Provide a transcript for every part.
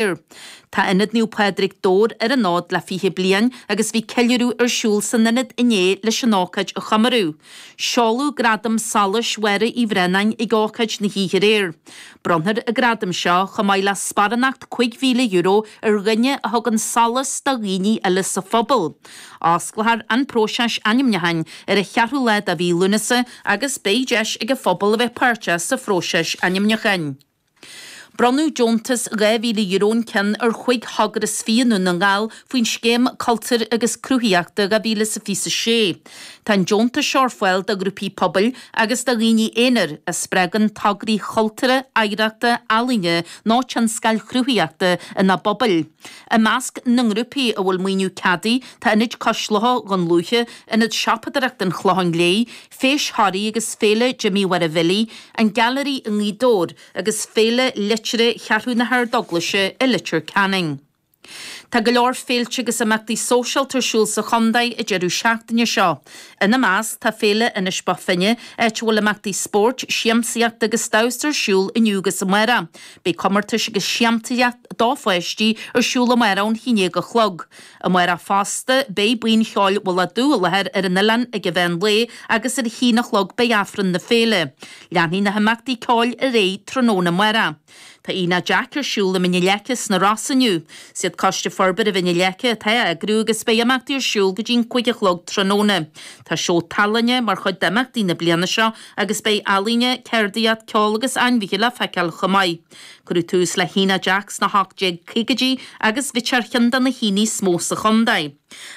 Fir. Tá Ionad Naomh Pádraig, Dobhair ar an fhód le 20 bliain agus bhí ceiliúradh ar siúl san Ionad inné leis an ócáid a chomóradh. Seoladh Gradam Solais Mháire Uí Bhraonáin ag ócáid na hoíche aréir. Bronnfar an gradam seo, chomh maith le sparánacht €5,000, ar dhuine a thugann solas do dhaoine eile sa phobal. Osclófar an próiseas ainmniúcháin ar an cheathrú lá de mhí Lúnasa agus beidh deis ag an phobal a bheith páirteach sa phróiseas ainmniúcháin. Bronnadh deontas €2,000 an ceann ar chúig thogra is fiche i nDún na nGall faoin Scéim Cultúir agus Cruthaitheachta 2026. Tá an deontas seo ar fáil do ghrúpaí pobail agus do dhaoine aonair a spreagann tograí chultúrtha, oidhreachta, ealaíne nó tionscail chruthaitheachta ina bpobail. I measc na ngrúpaí a bhfuil maoiniú ceadaithe tá Ionad Cois Locha Dhún Lúiche, Ionad Siopadóireachta an Chlocháin Léith, Feis Thoraí agus Féile Jimmy Mháire Bhillí, An Gailearaí i nGaoth Dobhair agus Féile Liteartha Cheathrú na hArdeaglaise i Leitir Ceanainn. Tá go leor féilte agus imeachtaí sóisialta ar siúl sa chontae an deireadh seachtaine seo. Ina measc tá Féile Inis Bó Finne, áit a bhfuil imeachtaí spóirt, siamsaíochta agus damhsa ar siúl inniu agus amárach. Beidh comórtais agus siamsaíocht do pháistí ar siúl amárach ón 11 a chlog. Amárach fosta, beidh buíon cheoil Mhullach Dubh i láthair ar an oileán ag an mheán lae agus ar a haon a chlog beidh Aifreann na Féile. Leanfaidh na himeachtaí ceoil ar aghaidh tráthnóna amárach. Tá Aonach Jack ar siúl i Mín na Leice sna Rosa inniu. Is iad Coiste Forbartha Mhín na Leice atá á eagrú agus beidh imeachtaí ar siúl go dtí an cúig a chlog tráthnóna. Tá seó tallainne mar chuid d'imeachtaí na bliana seo agus beidh ealaíne, ceardaíocht, ceol agus ainmhithe le feiceáil chomh maith. Cuireadh tús le hAonach Jack sna h-1850idí agus bhíodh sé ar chionn de na haonaigh is mó sa chontae.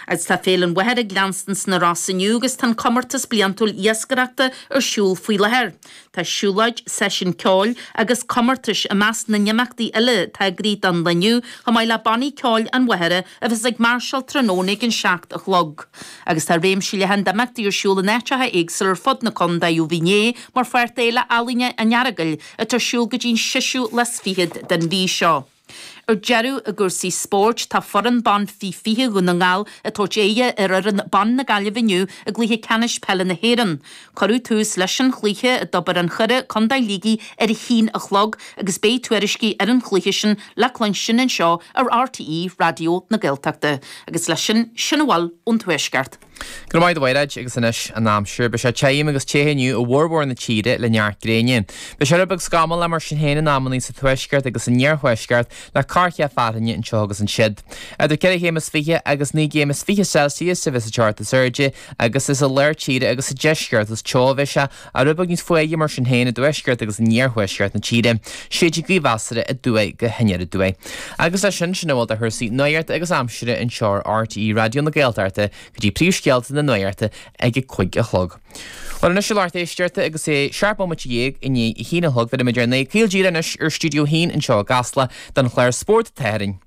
Agus tá Féile an Mhachaire ag leanstan sna Rosa inniu agus tá an comórtas bliantúil iascaireachta ar siúl faoi láthair. Tá siúlóid, seisiún ceoil agus comórtais i measc na n-imeachtaí eile atá eagraithe don lá inniu chomh maith le Bannaí Ceoil an Mhachaire a bheas ag máirseáil tráthnóna ag an seacht a chlog. Agus tá réimse leathan d'imeachtaí ar siúl in áiteacha éagsúla ar fud na contae ó bhí inné mar pháirt d'Fhéile Ealaíne an Earagail, atá ar siúl go dtí'n seisiú lá is fichead den mhí seo. Ar deireadh, i gcúrsaí spóirt, tá foireann ban Faoi 20 Dhún na nGall ag tabhairt aghaidhe ar fhoireann ban na Gaillimhe inniu i gcluiche ceannais peile na hÉireann. Cuireadh tús leis an chluiche i dTobar an Choire, Contae Shligigh ar a haon a chlog agus beidh tuairiscí ar an chluiche sin le cluinstin anseo ar RTÉ Raidió na Gaeltachta agus le sin, sin a bhfuil ón Tuaisceart. Go raibh maith agat a Mhaighréad agus anois an aimsir. Beidh sé tirim agus te inniu i bhformhór na tíre le neart gréine. Beidh sé rud beag scamallach mar sin féin in amannaí sa tuaisceart agus san iarthuaisceart le corrchith fearthainne anseo agus ansiud. Idir ceithre chéim is fiche agus naoi gcéim is fiche Celsius a bheas an teocht is airde agus is i lár tíre agus sa deisceart is teo a bheas sé Ar a beagán níos fuaire, mar sin féin, i dtuaisceart agus in iarthuaisceart na tíre, séidfidh gaoth mheasartha aduaidh go haniar aduaidh. Agus leis sin, sin a bhfuil de chúrsaí nuachta agus aimsire anseo ar RTÉ Raidió na Gaeltachta go dtí príomhscéalta na nuachta ag a cúig a chlog. Bhuel, anois a lucht éisteachta agus é seacht mbomaite dhéag i ndiaidh a haon a chlog, bhéarfaidh muid ár n-aghaidh caol díreach anois ar Stiúideo a hAon anseo i gCasla don chlár Spórt an tSathairn.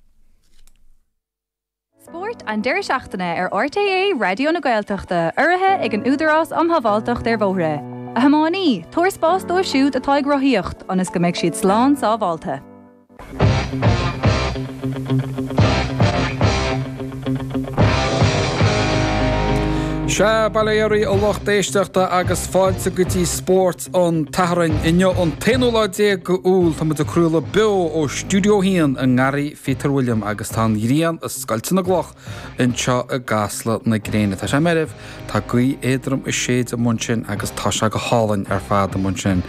Spórt an deireadh seachtaine ar RTÉ Raidió na Gaeltachta, urraithe ag an Údarás um Shábháilteacht ar Bhóithre. A thiománaí, tabhair spás dóibh siúd atá ag rothaíocht ionas go mbeidh siad slán sábháilte. Sea, bail ó Dhia oraibh a lucht éisteachta agus fáilte go dtí Spórt. an tSathairn. Inniu an t-aonú lá déag d'Iúil. Tá muid ag craoladh beo ó Stiúideo a hAon i nGarraí Pheter William agus tá an ghrian ag scoilteadh na gcloch anseo i gCasla na Gréine. Tá sé meirbh, tá gaoth éadrom ag séideadh amuigh ansin agus tá sé go hálainn ar fad amuigh ansin.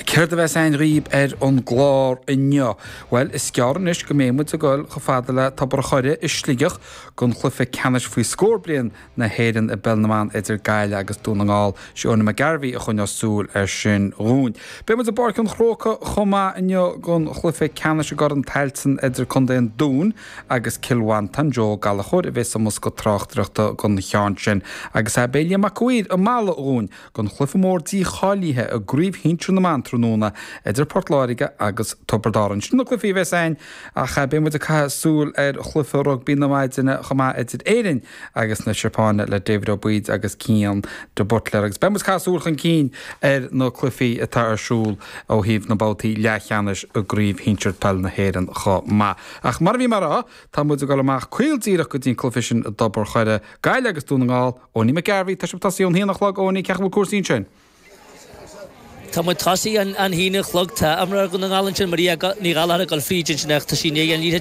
Céard a bheas againn dhaoibh ar an gclár inniu? Bhuel, is gearr anois go mbeidh muid ag dul chomh fada le Tobar an Choire i Sligeach don chluiche ceannais faoi scór bliain na hÉireann i bpeil na mban idir Gaillimh agus Dún na nGall. Sé Eoiní McGarvey a choinneos súil ar sin dhúinn. Beidh muid i bPáirc an Chrócai chomh maith inniu don chluife ceannais i gCorn Tailteann idir Contae an Dúin agus Cill Mhantain. Joe Ó Gallachóir a bhéas sa mbosca tráchtaireachta don cheann sin agus é beidh Liam Mac an Mhaoir i Mala dhúinn don chluife mór dícháilíthe i gCraobh Shinsear na mBan tráthnóna idir Port Láirge agus Tiobrad Árann. Sin na cluifí a bhéas againn ach beidh muid ag caitheamh súil ar chluife rugbaí na maidine chomh maith idir Éirinn agus na Seapáine le David Ó Baoid agus Cian de Buitléar agus beidh muid ag caitheamh súil chun cinn ar na cluichí atá ar siúl ó thaobh na mbabhtaí leathcheannais i gCraobh Shinsir Peil na hÉireann chomh maith. Ach mar a bhí mé ag rá, tá muid ag dul amach caol díreach go dtí an cluife sin i dTobar an Choire, Gaillimh agus Dún na nGall! Eoiní McGarvey, Tá sé tosaithe ón haon a chlog, Eoiní, cén chaoi a bhfuil cúrsaí ansin? Tá muid tosaithe ón haon a chlog, tá imreoir Dhún na nGall ansin, Maria Ní Ghallachóir ag dul fríd ansin ach tá sí i ndiaidh an liathróid a